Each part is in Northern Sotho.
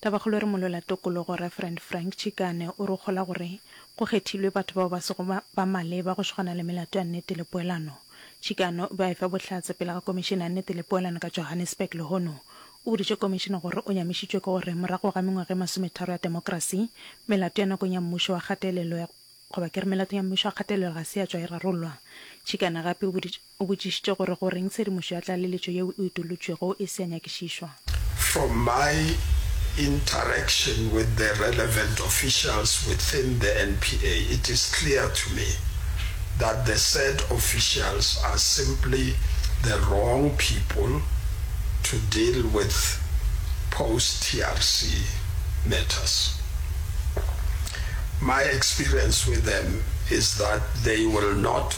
Tabakgolo e re molola tokologo Referent Frank Chikane o re o kgola gore go kgethilwe batho bao ba sego ba maleba go swgana le melato ya nnete le poelano. Chikane o be a efa bohlatse pele ga Komišene ya Nnete le Poelano ka Johannesburg lehono. O boditše Komišene gore o nyamišitšwe ke gore morago ga mengwaga e masometharo ya temokerasi, melato ya nakong ya mmušo wa kgatelelo goba ke re melato ya mmušo wa kgatelelo ga se ya tšwa e rarollwa. Chikane gape o boditše. O botšišitše gore goreng tshedimošo ya tlaleletšo yeo e utolotšwego e se ya nyakišišwa. From my interaction with the relevant officials within the NPA, it is clear to me that the said officials are simply the wrong people to deal with post-TRC matters. My experience with them is that they will not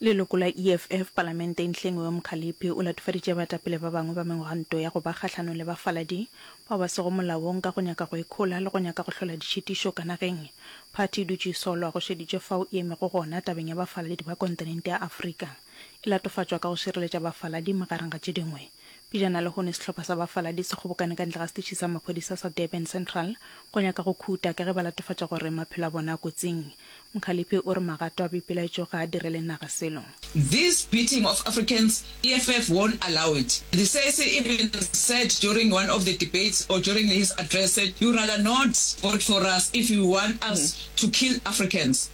Leloko la EFF palamenteng Hlengiwe Mkhaliphi o latofaditše baetapele ba bangwe ba megwanto ya go ba kgahlanong le bafaladi bao ba sego molaong ka go nyaka go ikhola le go nyaka go hlola ditšhitišo ka nageng. Phathi e dutše e solwa go šeditšwe fao e emego gona tabeng ya bafaladi ba kontinente ya Afrika e latofatšwa ka go šireletša bafaladi magareng ga tše dingwe. Pejana lehono sehlopha sa bafaladi se kgobokane ka ntle ga setiši sa maphodisa sa Durban Central go nyaka go khuta ka ge ba latofatša gore maphelo a bona a kotsing. Mkhaliphi o re magato a boipelaetšo ga a direle naga selo. This beating of Africans EFF won't allow it, De Sesi even said during one of the debates or during his address said you rather not vote for us if you want us to kill Africans.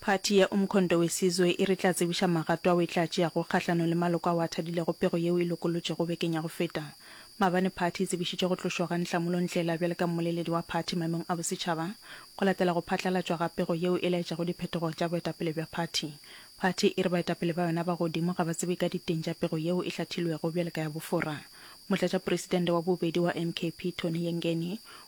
Phathi ya Umkhonto Wesizwe e re tla tsebiša magato ao e tla tšeago kgahlanong le maloko ao a thadilego pego yeo e lokolotšwego bekeng ya go feta. Maabane phathi e tsebišitše go tlošwa ga Nhlamulo Ndhlela bjale ka mmoleledi wa phathi maemong a bosetšhaba go latela go phatlalatšwa ga pego yeo e laetšago diphetogo tša boetapele bja phathi. Phathi e re baetapele ba yona ba godimo ga ba tsebe ka diteng tša pego yeo e hlathilwego bjale ka ya bofora. Motlatšaporesidente wa bobedi wa MKP, Tony Yengeni,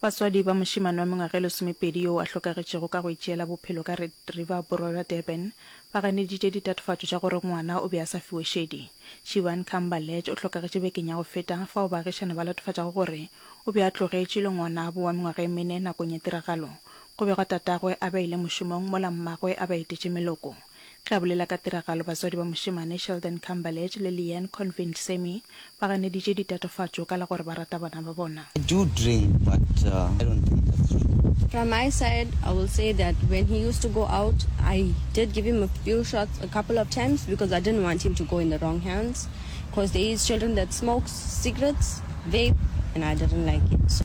Batswadi ba mošemane wa mengwaga e lesomepedi yoo a hlokagetšego ka go itšeela bophelo ka Red River Borwa bja Durban ba ganeditše ditatofatšo tša gore ngwana o be a sa fiwe šedi. Shivan Khambalej o hlokagetše bekeng ya go feta fao baagišani ba latofatšago gore o be a tlogetšwe le ngwanabo wa mengwaga e mene nakong ya tiragalo go begwa tatagwe a beile mošomong mola mmagwe a ba etetše meloko. Ge a bolela ka tiragalo, batswadi ba mošemane Sheldon Cumberledge le Leanne Convent Semi ba ganeditše ditatofatšo ka la gore ba rata bana ba bona. I do drink but I don't think that's true. From my side I will say that when he used to go out I did give him a few shots a couple of times because I didn't want him to go in the wrong hands cause there is children that smokes cigarettes, vape and I didn't like it.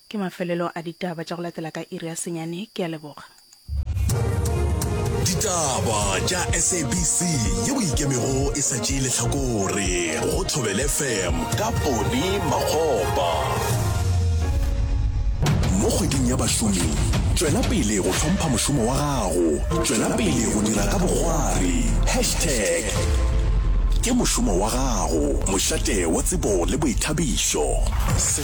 Ke mafelelo a ditaba tša go latela ka iri ya senyane. Ke a leboga. Ditaba tša SABC ye o ikemego e sa tšee lehlakore go Thobele FM ka Pone Makgopa. Mo kgweding ya bašomi, tšwela pele go hlompha mošomo wa gago. Tšwela pele go dira ka bokgwari. Hashtag Ke mošomo wa gago, mošate wa tsebo le boithabišo.